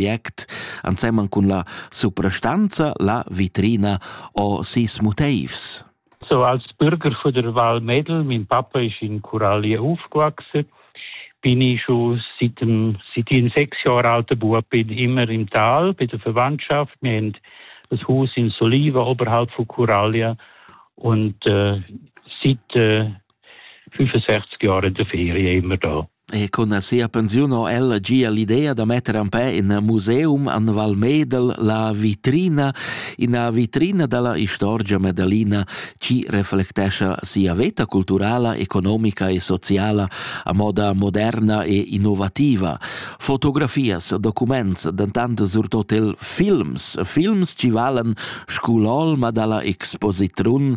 project ensemen cun la suprastanza La Vitrina o sis motivs. So als Bürger von der Val Medel, mein Papa ist in Coralie aufgewachsen, bin ich schon seit, seit ich sechs Jahren alter Bub bin immer im Tal bei der Verwandtschaft. Wir haben das Haus in Soliva oberhalb von Coralie und äh, seit äh, 65 Jahre de Ferie immer da. E con sia pensiun ho ella gia l'idea da metter en pè in museum an Val Medel la vitrina, ina vitrina dalla istorgia medalina ci reflectescha sia veta culturala, economica e sociala a moda moderna e innovativa. Fotografias, documents, dentant surtot il films, films ci valen scu l'olma dalla expositrun,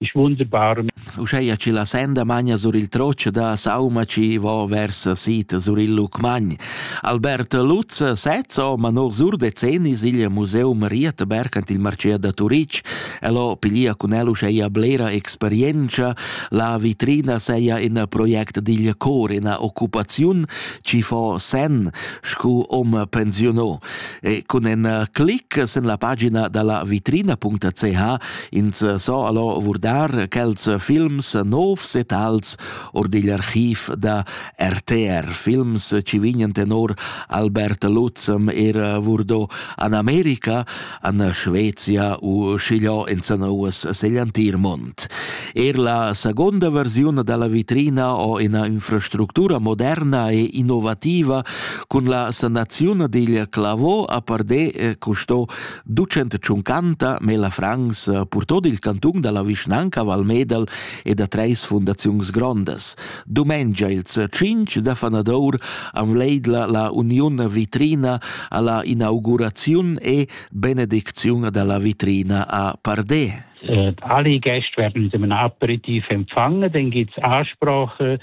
Ich wohne Barmen. Uscheia chi la senda magna sur il troce da sauma chi vo vers sita sur il Lucmagn. Albert Lutz sezzo, ma no sur decenni sigl museum Rietberg ant il Marcea da Turic, el ho pilia cun el uscheia blera experiencia, la vitrina seia in project digl cor in occupaziun, ci fo sen, scu om pensionò. E cun en clic sen la pagina dalla vitrina.ch Ins so allo vurdar quels films novs e tals or digl archiv da RTR, films ci vignan tenor Albert Lutzem er vurdo an Amerika, an Schwezia u schigliò in Zanouas Segliantir Mont. Er la seconda versione dalla vitrina o ina infrastruttura moderna e innovativa cun la sanazione digl clavò a Pardé eh, custo ducent tschuncanta Mela Franz purtò il cantun da la vischnanca Val Medel e da treis fundaziuns grondas. Dumengia ils cinc da fanadour avleidla la uniun vitrina alla inauguraziun e benedicziun dalla vitrina a Pardé. Äh, alle Gäste werden mit einem Aperitif empfangen, dann gibt es Ansprache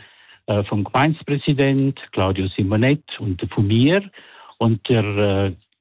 äh, vom Gemeindepräsident Claudio Simonet und von mir. Und der äh,